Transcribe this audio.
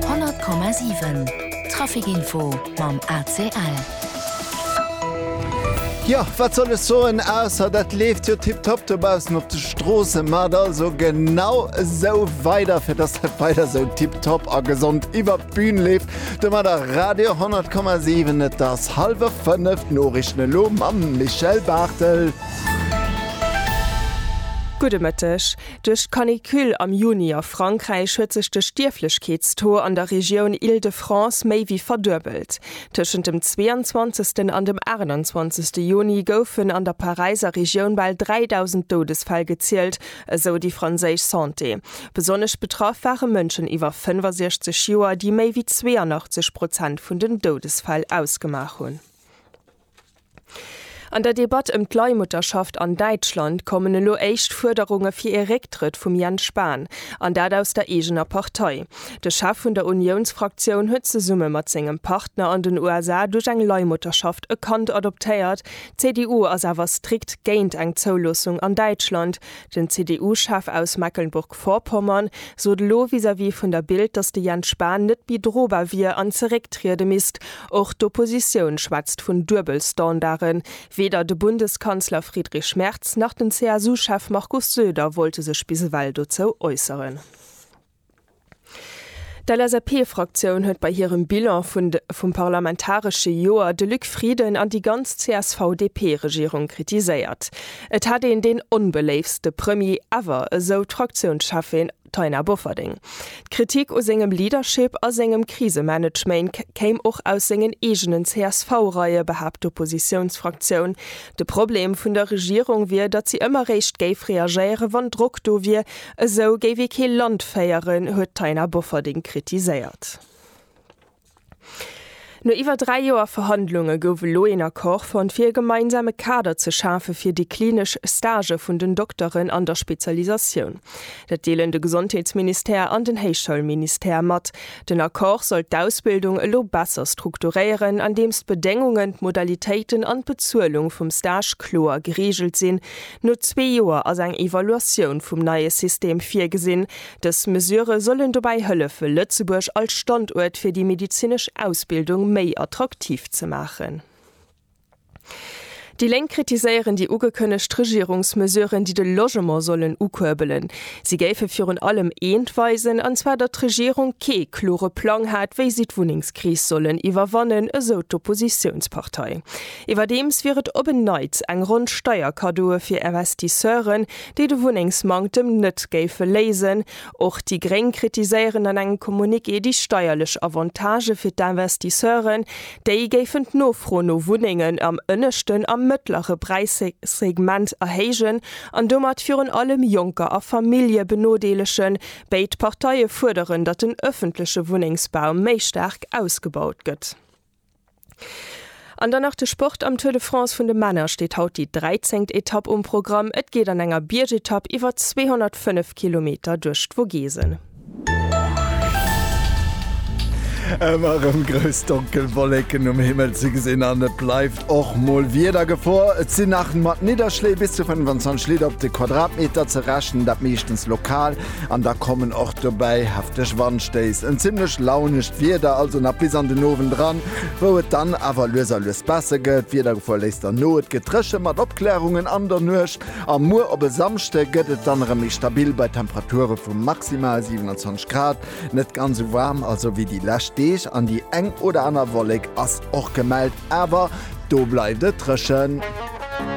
100,7 Trafic info mam ACL. Jo, wat soll ech soen, ausser dat leeft jo tiptop dobaussen op de Stroossen. Maacht also genau esou weider, fir dass dat weider esou tiptop a gesond iwwert d'Bün leeft. Domadder Radio 100,7. Et ass hallwer fënnef, d'Noriichten elo mam Michel Barthel. Gudde Mëtteg. Duerch d'Canicule am Juni a Frankräich huet sech de Stierflechkeetstaux an der Regioun Île-de-France méi wéi verduebelt. Tëschent dem 22. an dem 28. Juni goufen an der Paräiser Regioun bal 3.000 Doudesfäll gezielt, esou déi franséisch Santé. Besonnesch betraff ware Mënschen iwwer 65 Joer, déi méi wéi 82 Prozent vun den Doudesfäll ausgemaach hunn. An der Debatt ëm d'Leihmutterschaft an Däitschland kommen elo éischt Fuerderunge fir ee Récktrëtt vum Jens Spahn, an dat aus der eegener Partei. De Chef vun der Uniounsfraktioun huet zesumme mat sengem Partner an den USA duerch eng Leihmutterschaft e Kand adoptéiert. D'CDU ass awer strikt géint eng Zouloossung an Däitschland, Den CDU-Chef aus Mecklenburg-Vorpommern sot elo vis-à-vis vun der Bild, datt de Jens Spahn net méi drobar wier an zerécktriede misst. Och d'Oppositioun schwätzt vun Duebelstandarden. Weder de Bundeskanzler Friedrich Merz nach den CSU-Chef Markus Söder wollte sech bis ewell dozou äusseren. D'LSAP-Fraktioun huet bei hirem Bilan vum parlamentaresche Joer de Luc Frieden an déi ganz CSV-DP-Regierung kritiséiert. Et hätt een deen onbeléiftste Premier ever, esou d'Fraktiounscheffin Taina Bofferding. D'Kritik u sengem Leadership a sengem Krisemanagement kéim och aus sengen eegenen CSV-Reie, behaapt d'Oppositiounsfraktioun. De Problem vun der Regierung wier, datt si ëmmer réischt géif reagéieren, wann Drock do wier. Esou géif ee kee Land féieren, huet d'Taina Bofferding kritiséiert. No iwwer dräi Joer Verhandlunge gouf elo een Accord fonnt, fir e gemeinsame Kader ze schafe fir déi klinesch Stagë vun den Dokteren an der Spezialisatioun. Dat deelen de Gesondheetsministère an den Héichschoulministère mat. Den Accord soll d'Ausbildung elo besser strukturéieren, andeems d'Bedéngungen, d'Modalitéiten an d'Bezuelung vum Stage kloer gereegelt sinn, No zwee Joer ass eng Evaluatioun vum neie System virgesinn. Dës Mesure sollen dobäi hëllefe Lëtzebuerg als Standuert fir déi medezinesch Ausbildung méi attraktiv ze maachen. Déi Lénk kritiséieren déi ugekënnegt Regierungsmesuren, déi de Logement sollen ukuerbelen. Si géife virun allem eent weisen, an zwar datt d'Regierung kee klore Plang hat, wéi si d'Wunnengskris sollen iwwerwannen, esou d'Oppositiounspartei. Iwwerdeems wier et op en Neits eng Ronn Steierkaddoe fir Investisseuren, déi de Wunnengsmanktem net géife léisen. Och déi Gréng kritiséieren an engem Communiqué déi steierlech Avantagë fir d'Investisseuren. Déi géifen d'Nofro no Wunnengen am ënneschten a mëttlere Präissegment erhéijen an domat virun allem Jonker a Famillje benodeelegen. Béid Parteie fuerderen, datt den ëffentleche Wunnengsbau méi staark ausgebaut gëtt. An dann nach de Sport, Am Tour de France vun de Männer steet haut déi 13. Etapp um Programm. Et geet an enger Biergetapp iwwer 205 Kilometer duerch d'Vogesen. Ëmmer rëm grouss donkel Wolleken um Himmel ze gesinn an et bleift och mol Wiedergefor. Et sinn nach mat Nidderschléi bis zu 25 Liter op de Quadratmeter ze rechnen, dat meeschtens lokal. An da kommen och dobäi hefteg Wandstéiss, en zimlech launescht Wieder also nach bis an den Owend eran, wou et dann awer lues a lues besser gëtt. D'Wiedergefor léisst dann no, et gëtt dréche mat Opklärungen an der Nuecht a muer op e Samschde gëtt et dann erëm méi stabil bei Temperature vu maximal 27 Grad. Net ganz esou waarm also wéi déi lescht Deeg an déi eng oder aner Wollek ass och gemellt, awer do bleift et dréchen.